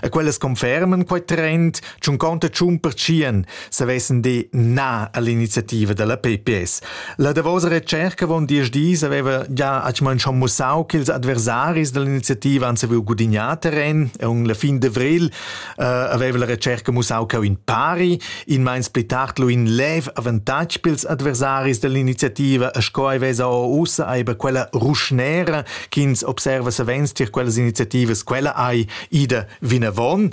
E quellas conferman quei trend, tschun conta tschun pertschien, savessen de na all'iniziativa della PPS. La davosa recerca von diesch dis aveva già atschman schon mussau che ils adversaris dell'iniziativa han saviu gudignar terren e un la fin d'avril uh, aveva la recerca mussau che in pari, in meins pli tard lu in lev avantatg pils adversaris dell'iniziativa e sco ei vesa ussa eiba quella ruschnera ch'ins observa savens tier quellas iniziativas, quella ei ida vinavon.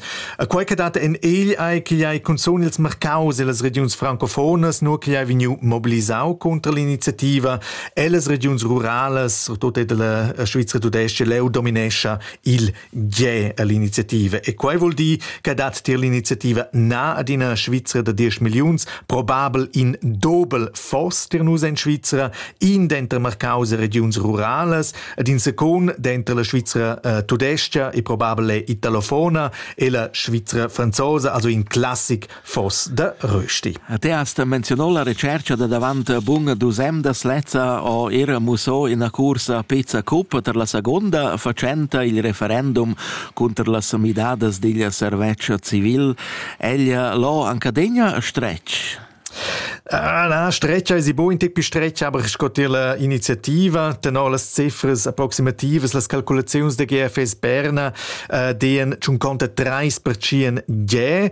Quei che dat en egl ei ch'igl ei cunzun ils marcaus e las regiuns francofonas, nur ch'igl ei vegniu mobilisau contra l'iniziativa e las regiuns ruralas, surtut era la Svizra tudesca, leu dominescha il Ge è l'iniziativa e quai vul dir che dat tier l'iniziativa na ad ina Svizra da 10 milliuns probabel in dobel foss tir nus en Svizra, in denter marcaus e regiuns ruralas, ed in secund denter la Svizra eh, tudescha e probabel è italofona e la Svizra franzosa, also in classic Foss da rösti. Te hast menzionò la recerca da davant bun dus emdas lezza ho era mussò ina cursa pizza cup per la seconda facenta il referendum cunter las midadas digl servetsch civil. Ella l'ho anca degna stretg. Ah, na, stretcha è bo in tip stretcha, aber sco tier la iniziativa, tenor las cifras approximativas, las calculaziuns de GFS Berna, eh, dien 53% ge,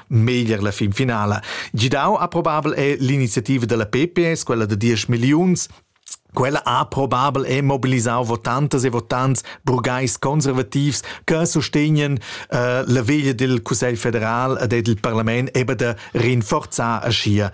meglier la fin finala. Gidau ha probabel è l'iniziativa della PPS, quella de 10 milliuns, Quella ha probabel è mobilisau votantas e votants burgais conservativs che sostegnen uh, la veglia del Cussegl federal ed del Parlament eben de rinforzar a schia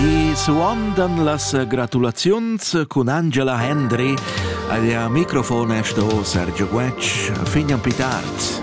I suondan las gratulaziuns cun Angela Hendry. Aglia microfon è sto Sergio Guetsch, fignan pitart.